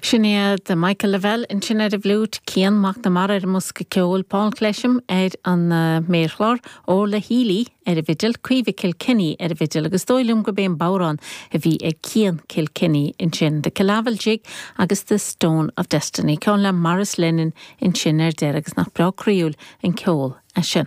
Sin iad Michael Lavelle ansin ar an bhfliúit, Cian Mac na Mara ar an mbosca ceoil, Paul Clesham ar an méarchlár, Orla Healy ar an bhfidil, Caoimhe Kilkenny ar an bhfidil agus is dóigh liom gurb é an bodhrán a bhí ag Cian Kilkenny ansin, The Killavil Jig agus The Stone of Destiny, ceann le Maurice Lennon ansin ar deireadh agus nach breá croíúil an ceol é sin.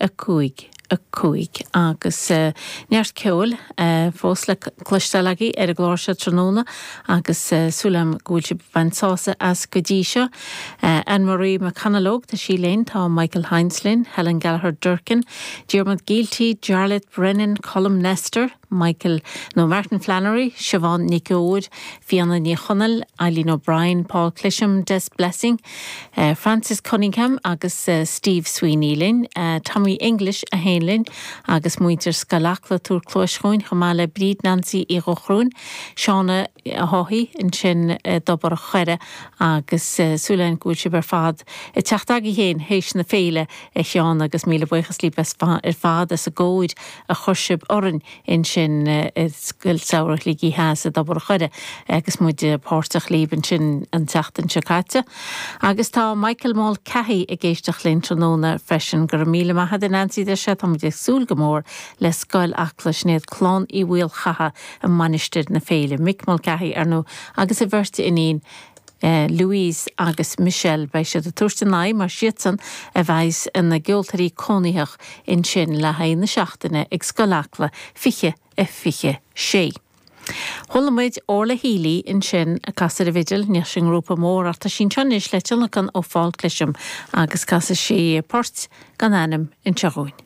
5, 5, agus neart ceoil fós le cloisteáil agaibh ar an gclár seo tráthnóna agus súil agam go bhfuil sibh ag baint sásaimh as go dtí seo. Anne Marie McConalogue, tá sí linn, tá Michael Hynes linn, Helen Gallagher Durkin, Diarmuid Gielty, Jarleth Brennan, Colm Nestor, Michael nó Martin Flannery, Siobhán Nic Eoin, Fiona Ní Chonaill, Eileen O'Brien, Paul Clesham, Des Blessing, Francis Cunningham agus Steve Sweeney linn, Tommy English é féin linn agus muintir Scoil Acla, tabhair cluais chugainn, chomh maith le Bríd Nancy Uí Ghallchóir, Seán Ó hEochaidh ansin i dTobar a' Choire agus súil againn go bhfuil sibh ar fad ag teacht chugaibh féin théis na féile a Sheáin agus míle buíochas libh ar fad as an gcóir a chuir sibh orainn ansin i Scoil Samhraidh Shligigh Theas i dTobar a' Choire agus muid páirteach libh ansin an tseachtain seo caite. Agus tá Michael Mulcahy ag éisteacht linn tráthnóna freisin. Go raibh míle maith ad Nancy deir sé, tá muid ag súil go mór le Scoil Acla Sinéad, Clann Uí Mhaolchatha i Mainistir na Féile, Mick Mulcahy, ar ndú, agus a bheirt iníon, Louise agus Michelle, beidh siad ag tabhairt a n-aghaidh mar siadsan a bheas ina gceoltóirí cónaitheach ansin le haghaidh na seachtaine ag Scoil Acla 2026. Chuala muid Orla Healy ansin ag casadh ar an bhfidil, bhí sí i ngrúpa mór ach tá sí anseo anois le tionlacan ó Paul Clesham agus casfaidh sí port gan ainm anseo dhúinn.